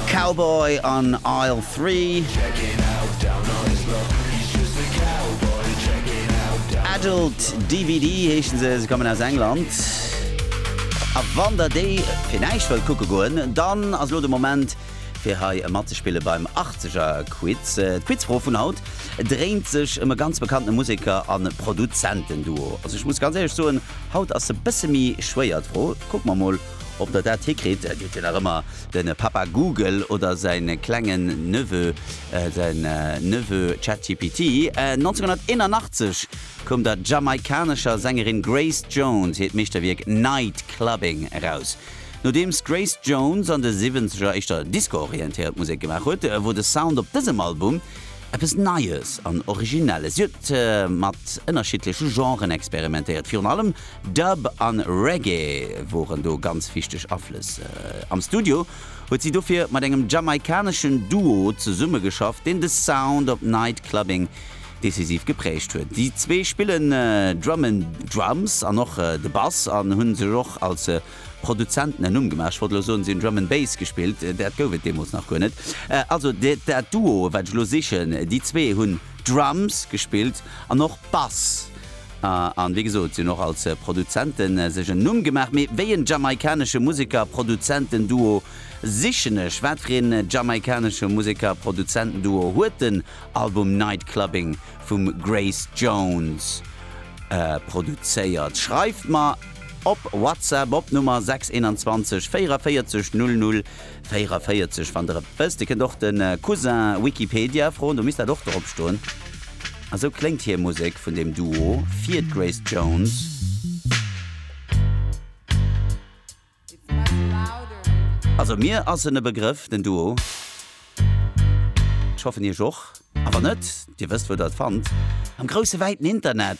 Cowboy an Aisle Three. Adult DVD heeschen se, se kommen aus England. A wann der déi fir näischt wëllt kucke goen, dann ass elo de Moment fir hei matzespille beim Achtzegerquiz. D'Quizfro vun haut dréint sech ëm e ganz bekannte Museker a Produzentenduo. Also ech muss ganz éierlech soen, haut ass se e bësse méi schwéier d'Fro. Kucke mer mol Ob der dat hikritt, kritt dir nach ëmmer de Papa Google oder säin klengen Neveu, säin Neveu ChatGPT. 1981 koum der jamaikanescher Sängerin Grace Jones hiert Meeschterwierk Night Clubbing eraus. Nodeems d'Grace Jones an de Siwwenzeger éischter Disco-orientéiert Musek gemaach huet, wor de Sound op dësem Album, Eppes Neies an Originelles. Si huet mat ënnerschiddleche Genren experimentéiert, virun allem Dub an Reggae woren do ganz wichteg Aflëss. Am Studio huet si dofir mat engem jamaikaneschen Duo zesummegeschafft, deen de Sound op Night Clubbing decisiv geprägt huet. Déi zwee spillen Drum'n'Drums an och de Bass an hu sech och als Produzenten en Numm gemaach, ech wollt elo soen, se hunn Drum and Bass gespillt, dat gouf et deemools nach guer net. Also dat Duo, wat ech elo sichen, déi zwee hunn Drums gespillt an och Bass an, wéi gesot, se hunn och als Produzente sech en Numm gemaach. Mee wéi en jamaikanesche Museker-Produzenten-Duo sichen ech? Wat fir een jamaikanesche Museker-Produzenten-Duo huet den Album Night Clubbing vum Grace Jones produzéiert? Schreift mer! Op WhatsApp op Nummer 621 44 00 44 wann der et wësst. Dir kënnt och de Cousin Wikipedia froen, do misst dat och drop stoen. A sou kléngt hir Musek vun dem Duo fir d'Grace Jones. Also mir ass en e Begrëff den Duo. Ech hoffen iech och. A wann net, dir wësst wou der et fannt, am grousse wäiten Internet.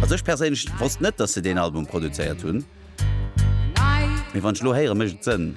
Also ech perséinlech wosst net dass se deen Album produzéiert hunn, mee wann ech lo héieren mécht et Sënn.